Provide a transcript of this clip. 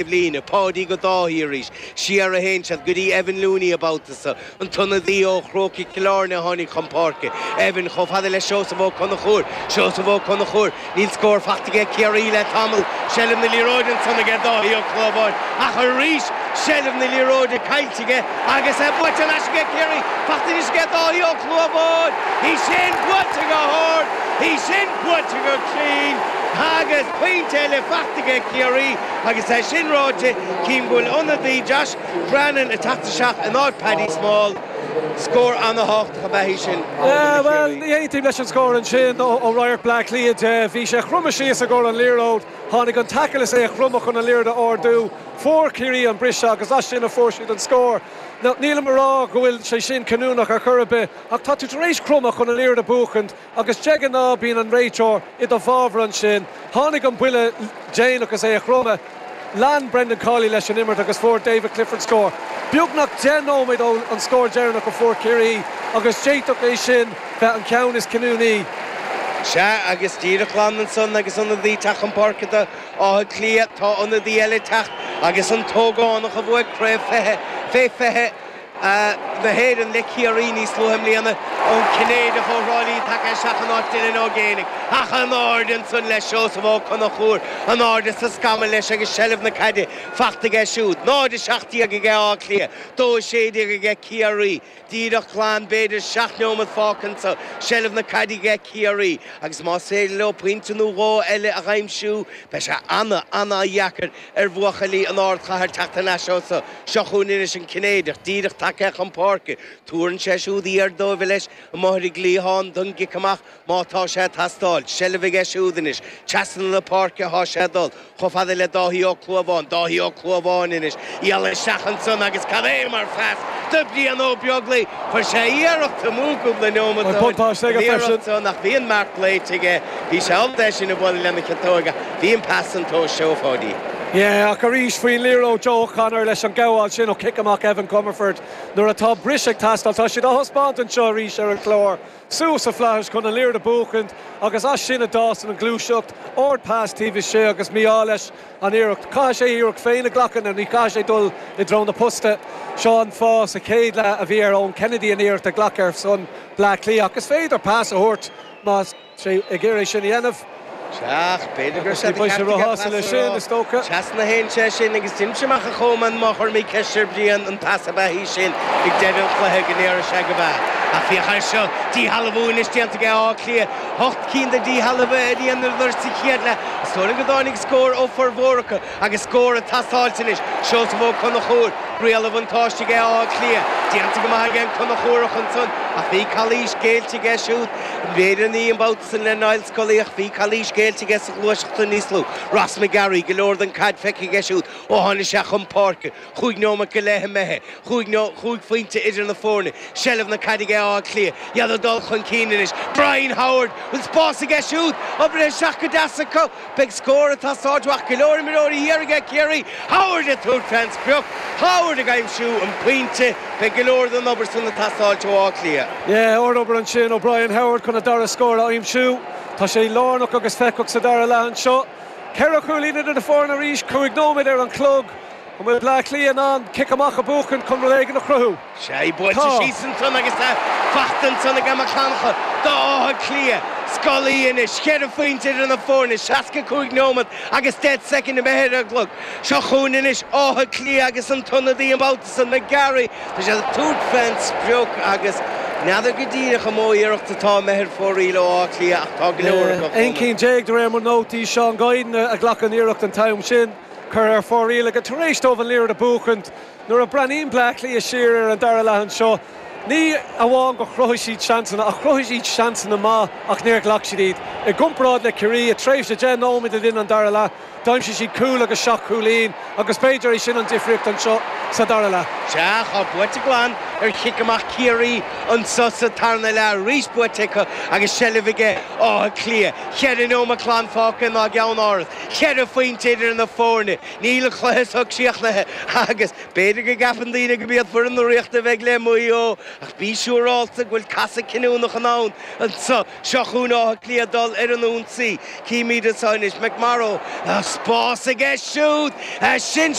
Eibhlíne, Páidí go Dáithí arís, siar a théann siad, go dtí Evan Looney an babhta so, an t-ionadaí ó Chrócaigh Chill Airne a tháinig chun páirce, Evan chomh fada le Seosamh Ó Conchúir, Seosamh Ó Conchúir, níl scór fachta aige Ciarraí le tamall, seilbh na liathróide ansan aige Dáithí Ó Clúmháin, ach arís seilbh na liathróide caillte aige agus é buailte ar ais aige Ciarraí, faighte anois aige Dáithí Ó Clúmháin, í sin buailte go hard, í sin buailte go cruinn agus pointe eile fachta aige Ciarraí. Agus é sin ráite, chím go bhfuil ionadaí Josh Brannen ag teacht isteach in áit Paddy Small. Scór ana-thábhachtach ab ea é sin ó na Ciarraígh. Bhuel, ní aontaím leis an scór ansin ó radharc Bleá Cliath de. Bhí sé chromtha síos i gcomhair an liathróid, tháinig an taicil is é a chromadh chun an liathroid a ardú. Fuair Ciarraí an briseadh agus as sin a fuair siad an scór. Nílim a rá go bhfuil sé sin cinniúnach ar chor ar bith ach tá tú tar éis cromadh chun an liathroid a bhuachaint, Agus de ghnáth bíonn an réiteoir i do fabhar ansin. Tháinig an buille déanach is é a chromadh. Lean Brendan Cawley leis an imirt agus fuair David Clifford scór. Beagnach deich nóiméad ó an scór deireanach a fuair Ciarraí agus d'fhéadfadh é sin bheith an ceann is cinniúnaí. Sea agus díreach glan ansan agus ionadaí ag teacht chun páirce do Áth Cliath, tá ionadaí eile ag teacht agus an t-ógánach a bhuaigh Craobh 20 fé 20, na hÉireann le Ciarraí níos luaithe i mbliana, an Cinnéideach ó Thrá Lí tagaithe isteach in áit Dylan Ó Géibheannaigh, ach anáirde ansan le Seosamh Ó Conchúir, anáirde sa scamall leis agus seilbh na caide fachta aige siúd. 0, 17 aige Áth Cliath, 2, 16 aige Ciarraí, díreach glan b'fhéidir seacht neomat fágtha ansan, seilbh na caide aige Ciarraí agus más féidir leo pointe nó dhó eile a aimsiú beidh sé ana-ana-dheacair. ar bhuachaillí an ardchathair teacht thar n-ais as so. Seo chugainn anois an Cinnéideach, díreach tagaithe chun páirce. Tabharann sé siúd airde dóibh leis, amuigh ar an gcliathán don gcic amach, má tá sé ag teastáil. Seilbh aige siúd anois. Trasna na páirce thá sé ag dul, chomh fada le Dáithí Ó Clúmháin. Dáithí Ó Clúmháin anois. Iall isteach ansan agus cad é mar phas do Bhrian Ó Beaglaoi? Chuir sé iarracht amú cúpla neomat ó shin, an iarracht seo ach bhí an marc glaoite aige. Bhí sé ábalta é sin a bhualadh lena chiotóig. Bhí an pas san tó seafóidi. Yeah, ach arís faoin liathróid Joe O'Connor leis an ghabháil sin ó chic amach Evan Comerford nuair atá bris ag teastáil, tá siad á thaispeáint anseo arís ar an chlár, suas sa flaithis chun an liathróid a bhuachaint agus as sin a d'fhásann an gluaiseacht, ard pas taobh istigh agus mí-ádh leis an iarracht. Caithfidh sé a iarracht féin a ghlacadh nó ní chaithfidh sé dul i dtreo na posta. Seo an fáth sa chéad leath a bhí ar Eoin Kennedy an iarracht a ghlacadh ar son Bleá Cliath ach is féidir pas a thabhairt má tá sé ag iarraidh sin a dhéanamh. Ach b'fhéidir go raibh sé de cheart aige pas a thabhairt. Trasna a théann sé sin agus d'imigh sé amach, a Choman, má chuir mé ceist ar Bhrian an pas ab ea í sin ag deireadh an chluiche go ndéarfadh sé gurb ea. Ach féach air seo, díshealbhú anois déanta aige Áth Cliath. Ocht gcinn de dhíshealbhuithe a dheineadar sa chéad leath. Is dóigh liom go dtáinig scór ó formhór acu. Agus cabhair ag teastáilt anois, Seosamh Ó Conchúir, riail an bhuntáiste aige Áth Cliath. Déanta go maith aige an Conchúrach ansan ach bhí calaois géillte aige siúd. B'fhéidir ní an babhta san le Niall Scully ach bhí calaois géillte aige sa ghluaiseacht san níos luaithe. Ross McGarry, go leor den chaid feicthe aige siúd ó tháinig sé chun páirce. Cúig nóimeat go leith imithe, cúig phointe idir na foirne. Seilbh na caide ag Áth Cliath. Iad ag dul chun cinn anois. Brian Howard! Bhfuil spás aige siúd? Oibrithe isteach go deas acu. Beidh scór ag teastáilt uathu. Go leor imreoirí thiar aige Ciarraí. Howard ag tabhairt fén sprioc. Howard ag aimsiú an pointe. Beidh go leor den obair san ag teastáilt ó Áth Cliath. Ard-obair ansin ó Brian Howard chun a dara scór a aimsiú. Tá sé lárnach agus feiceálach sa dara leath anseo. Ceithre chúilín idir na foirne arís. Cúig nóimeat ar an chlog. An bhfuil Bleá Cliath in ann cic amach a bhuachan chun rud éigin a chruthú? Sea, í buailte síos ansan agus tá fachta ansan ag Emma Conchell d'Átha Cliath. Scully anois, cheithre phointe idir na foirne, seasca cúig nóiméad agus deich soicind imithe ar an gclog. Seo chugainn anois Áth Cliath agus an t-ionadaí an babhta san, McGarry. Tá siad ag tabhairt fén sprioc agus n'fheadar go díreach an mó iarracht atá imithe ar fóraoil ó Áth Cliath ach tá go leor acu ann. Aon chinn déag de réir mo nótaí. Seán Guiden a ghlac an iarracht an t-am sin. Curtha ar fóraoil aige tar éis dóibh an liathróid a bhuachaint. Nuair a bhreathnaíonn Bleá Cliath siar ar an dara leath anseo, ní amháin gur chruthaigh siad seansanna, ach chruthaigh siad seansanna maith ach níor ghlac siad iad. I gcomparáid le Ciarraí, i dtréimhse deich nóiméad le linn an dara leath, d'aimsigh siad cúl agus seacht chúilín agus b'fhéidir é sin an difríocht anseo sa dara leath. Sea, ceann buaite glan ar chic amach Ciarraí anseo sa tarna leath arís, buaite acu agus seilbh ag Áth Cliath. Cheithre neomat glan fágtha ann i gCeannáras. Ceithre phointe idir na foirne, níl an cluiche so críochnaithe agus b'fhéidir go gceapann daoine gurb iad foireann na Ríochta a bheidh le Maigh Eo ach bí siúráilte go bhfuil casadh cinniúnach i ndán anseo. Seo chugainn Áth Cliath ag dul ar an ionsaí. Címid anseo anois. McMorrow, spás aige siúd!